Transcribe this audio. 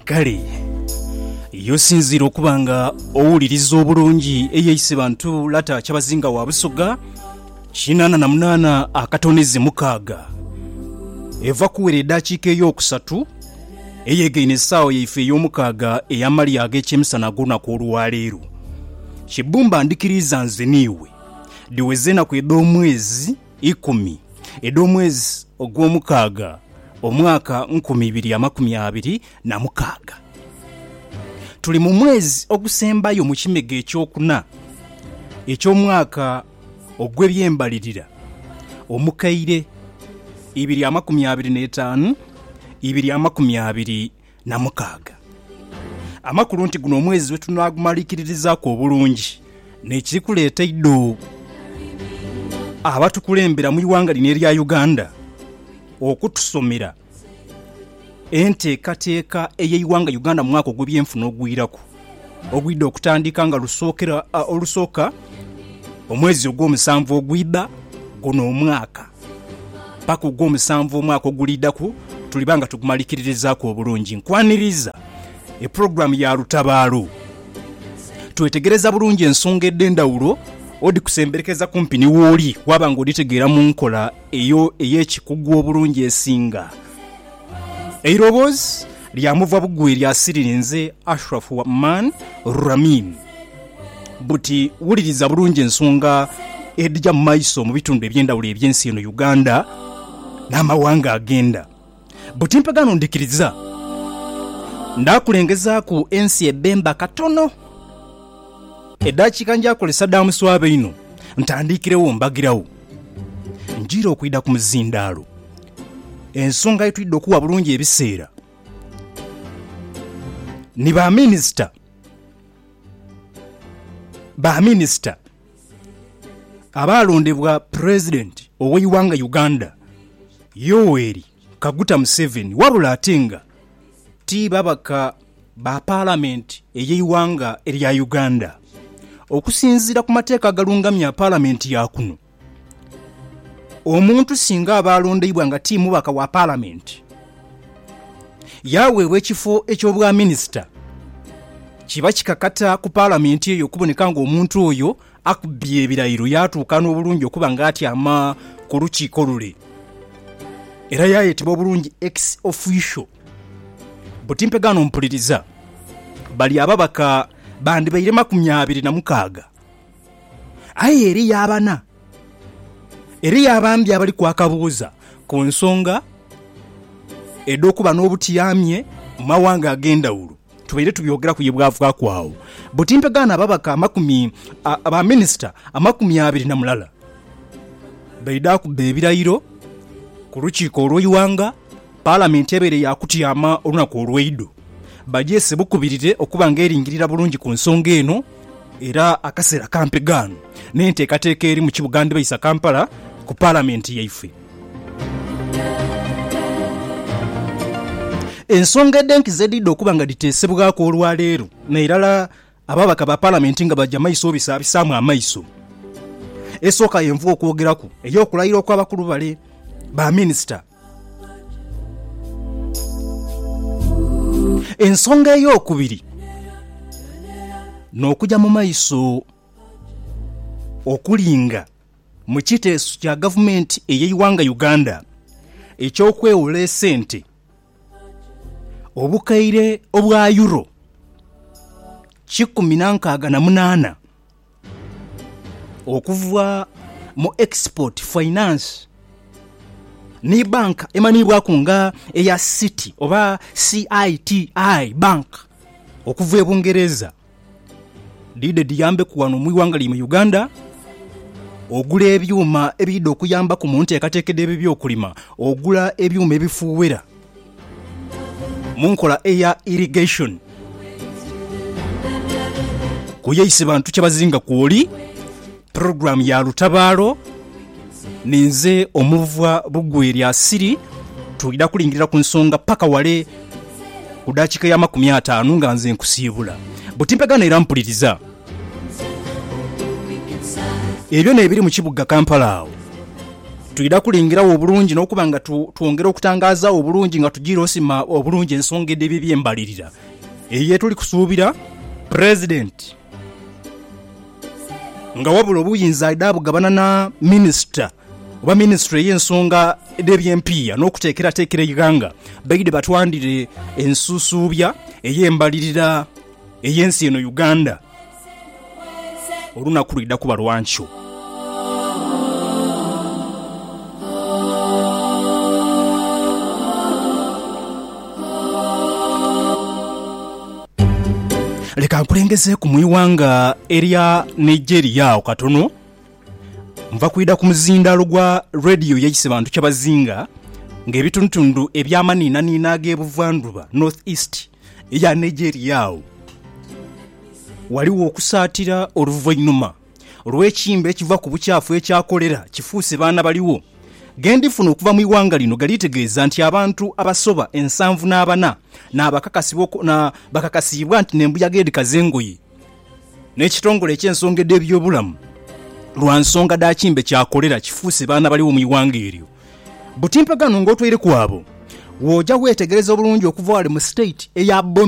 Kale yosinziire okuba nga owuliriza obulungi eyo eise bantu lata kyabazinga wa busoga kinana na munana akatoneze mukaaga eva kuwera edakiika eyokusatu eyegaine esaawa yaife eyomukaaga eyamalya agekyemisana agolunaku olwaleero kibumba ndikiriiza nze niiwe diweze enaku edhomwezi ikumi edh'omwezi ogwomukaaga, omwaka nkumi ibiri amakumi abiri na mukaaga. Tuli mu mwezi ogusembayo mu kimega ekyokuna eky'omwaka ogw'ebyembalirira omukaire ibiri amakumi abiri n'etaanu, ibiri amakumi abiri na mukaaga. Amakulu nti guno omwezi we tunaagumaliikiririzaaku obulungi n'ekiri kuleeta idho abatukulembera mu ighanga lino erya Uganda okutusomera enteekateeka ey'eighanga Uganda mu mwaka ogw'ebyenfuna ogwiraku. Ogwidha okutandika nga lusookera olusooka omwezi ogw'omusanvu ogwidha guno omwaka paka ogw'omusanvu omwaka oguliidhaku tuliba nga tugumalikiririzaaku obulungi. Nkwaniriza epulogulaamu ya Lutabaalo. Twetegereza bulungi ensonga edh'endhawulo odhikusemberekeza kumpi ni wooli waaba nga odhitegeera mu nkola ey'ekikugu obulungi esinga. Eiroboozi. Lya muva bugwi lya siriri nze Ashraf Wa'man Ramin. Buti wuliriza bulungi ensonga edhija mu maiso mu bitundu eby'endhawulo eby'ensi eno Uganda n'amawanga agenda buti mpe gano ndhikiriza. Ndhakulengezaaku ensi ebemba katono. Edhakiika njakolesa dha muswaba inho ntandiikiregho mbagiragho. Njira okwidha ku muzindaalo. Ensonga ye twidha okugha bulungi ebiseera ni baminisita. Baminisita abaalondebwa Pulezidenti ow'eighanga Uganda, Yoweri Kaguta Museveni wabula ate nga ti babaka ba Palamenti ey'eighanga erya Uganda. Okusinziira ku mateeka agalungamya Palamenti ya kuno, Omuntu singa aba alondeibwa nga ti mubaka wa Palamenti, yaaweebwa ekifo eky'Obwaminisita, kiba kikakata ku Palamenti eyo okuboneka ng'omuntu oyo akubye ebirairo yaatuuka n'obulungi okuba ng'atyama ku lukiiko lule era yaayetebwa obulungi ex officio. Buti mpegaano mpuliriza, bali ababaka bandibaire makumi abiri na mukaaga. Aye eriyo abana, eriyo abambi abali kwaka buuza ku nsonga edh'okuba n'obutyamye mu mawanga ag'endhawulo. Tubaire tubyogeraku ye bwavaaku agho buti mpegaano ababaka amakumi a, ba minisita amakumi abiri na mulala baidha kubba ebirayiro ku lukiiko olw'eighanga, Palamenti ebeire yaakutyama olunaku olweidho bagyese bukubirire okuba nga eringirira bulungi ku nsonga eno era akaseera ka mpegaano n'enteekateeka eri mu kibuga ndibaisa Kampala ku Palamenti yaife. Ensonga edh'enkizo edhidha okuba nga dhiteesebwaku olwaleero n'erala Ababaka ba Palamenti nga baja maiso obisaabisaamu amaiso. Esooka yenvuga okwogeraku ey'okulayira okw'abakulu bale ba minisita. Ensonga ey'okubiri n'okuja mu maiso okulinga mu kiteeso kya gavumenti ey'eighanga Uganda eky'okwewola esente. Obukaire obwa Euro kikumi na nkaaga na munaana okuva mu Export Finance ni banka emanhiibwaku nga eya Citi oba CITI Bank okuva e Bungereza. Dhiidhe dhiyambeku ghano mu ighanga lyaimwe Uganda ogula ebyuma ebiidha okuyambaku mu nteekateeka dh'ebyokulima, ogula ebyuma ebifuuwera mu nkola eya irrigation. Kuyeise bantu kye bazinga kwoli. Program ya Lutabaalo, ninze omuvwa Lugwe lya Siri. Twidha kulingirira ku nsonga paka wale ku dakika ya makumi ataanu nga nze nkusiibula. Buti mpegana era mpuliriza. Ebyo n'ebiri mu kibuga Kampala awo twidha kulingirawo obulungi n'okuba nga tu, twongera okutangaazawo obulungi nga tujiira osima obulungi ensonga edh'ebyo eby'embalirira eyo yetuli kusuubira. President. Nga wabula obuyinza aidha abugabana na Minisita oba Minisitule ey'ensonga edh'eby'empiiya n'okuteekerateekera eighanga, baidhe batwandhire ensusuubya ey'embalirira ey'ensi eno Uganda olunaku lwidha kuba lwa nkyo. Leka nkulengezeeku mu ighanga erya Nigeria agho katono. Nva kwidha ku muzindaalo gwa Radio yaise bantu kyabazinga ng'ebitundutundu eby'amanhiinanhiina ag'ebuvandhuba, North East, eya Nigeria agho. Ghaligho okusaatira oluvainhuma. Olw'ekiimba ekiva ku bukyafu ekya kolera kifuuse baana baligho. Ge ndifuna okuva mu ighanga lino galitegeeza nti abantu abasoba ensanvu n'abana bakakasiibwa nti n'embuyaga edhikaza engoye n'ekitongole eky'ensonga edh'ebyobulamu lwa nsonga dha kiimba kya kolera kifuuse baana baligho mu ighanga eryo. Buti mpeganho ng'otwaireku abo. Bw'oja weetegereza obulungi okuva ghale mu state eya Borno,